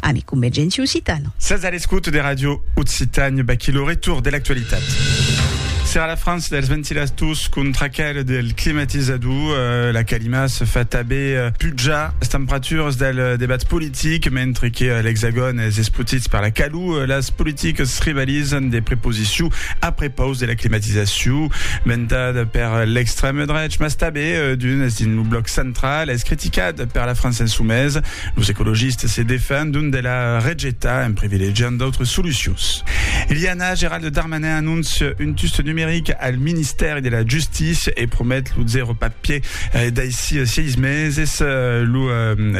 Ami Convergenti Occitano. Sas a l'escouta de Ràdio Occitània, vaquí lo retorn de l'actualitat. Serà la frança dels ventilators contra aquel del climatizador, eh, la calima se fa tanben eh, pujar las temperaturas del eh, debat politic, mentre que eh, l'Hexagòn es espotit per la calor, eh, las politicas rivalizan de preposició a prepaus de la climatizacion, ventada per eh, l'extrèm drech, mas tanben eh, d'unes dins lo bloc central, es criticat per la França insomesa. Los ecologistes se defendon de la rejetar en privilegiant d'autres solucions. Iliana, Gerald Darmanin anóncia un tust numeric al Ministèri de la Justícia e promet lo zèro papier daicí 6 meses. Lo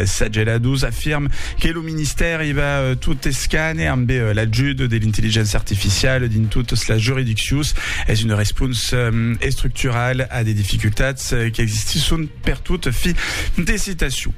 Sagela Dous afirme que lo Ministèri va tot escane amb l'ajut de l'intelligéncia artificiala dins totas las juridiccions. Es una responsa estructurala a de dificultats qu'existisson Pertot, fi de citacion.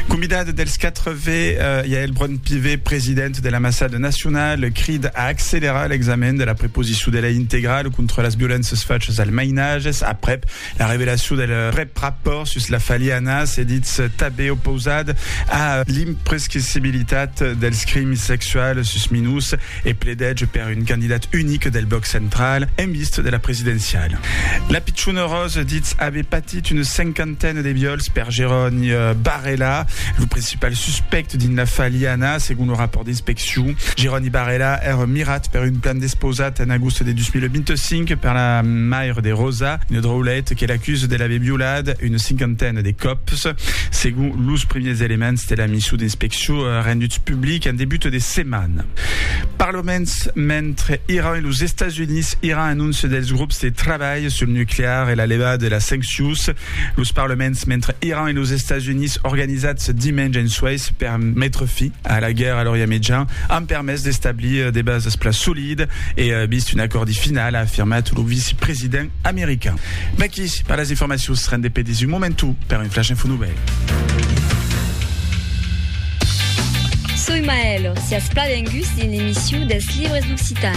Convidat dels 4 ve Yaël Braun-Pivet, president de l'Ambassade nationale, crida a accelerar l'examen de la preposició de lei integrale contra las violéncias fachas als mainatges aprèp la revelacion del prèp rapòrt sus la faliana, se ditz tanben opausat a l'imprescrissibilitat dels crims sexuals sus minors. e pledètz per un candidat unic del blòc central en vist de la presidenciala. La pichona Rose ditz aver patit una cinquantena de viòls per Jeroni Barrela, lo principal suspèct dins l'afar Liana, segon lo rapòrt d'inspeccion. Jeroni Barrela èra mirat per un plan despausat en agost de 2025 per la maire de Rosa, una draulet que l'acusa de l'aver violat una cinquantena de còps, segon los primièrs elements de la mission d'inspeccion. Çò renduts publics en debut de setmana. Per lo mens, mentre Iran e los Estats Units iran anóncer dels grops de trabalh sul nuclear e la levada de las sanccions, los parlaments mentre Iran e los Estats Units organizats dimenge en Suèis per metre fi a la guèrra a l'Orient Mejan an permés d'establir de basas pla solidas e vist un acòrdi final, a afirmat lo vicepresident. American. Vèqui per las informacions, rende pedis un momentu per un flash info novèl. Soi Maèlo, siatz plan benguts dins l'emissio dels libres d'occitan.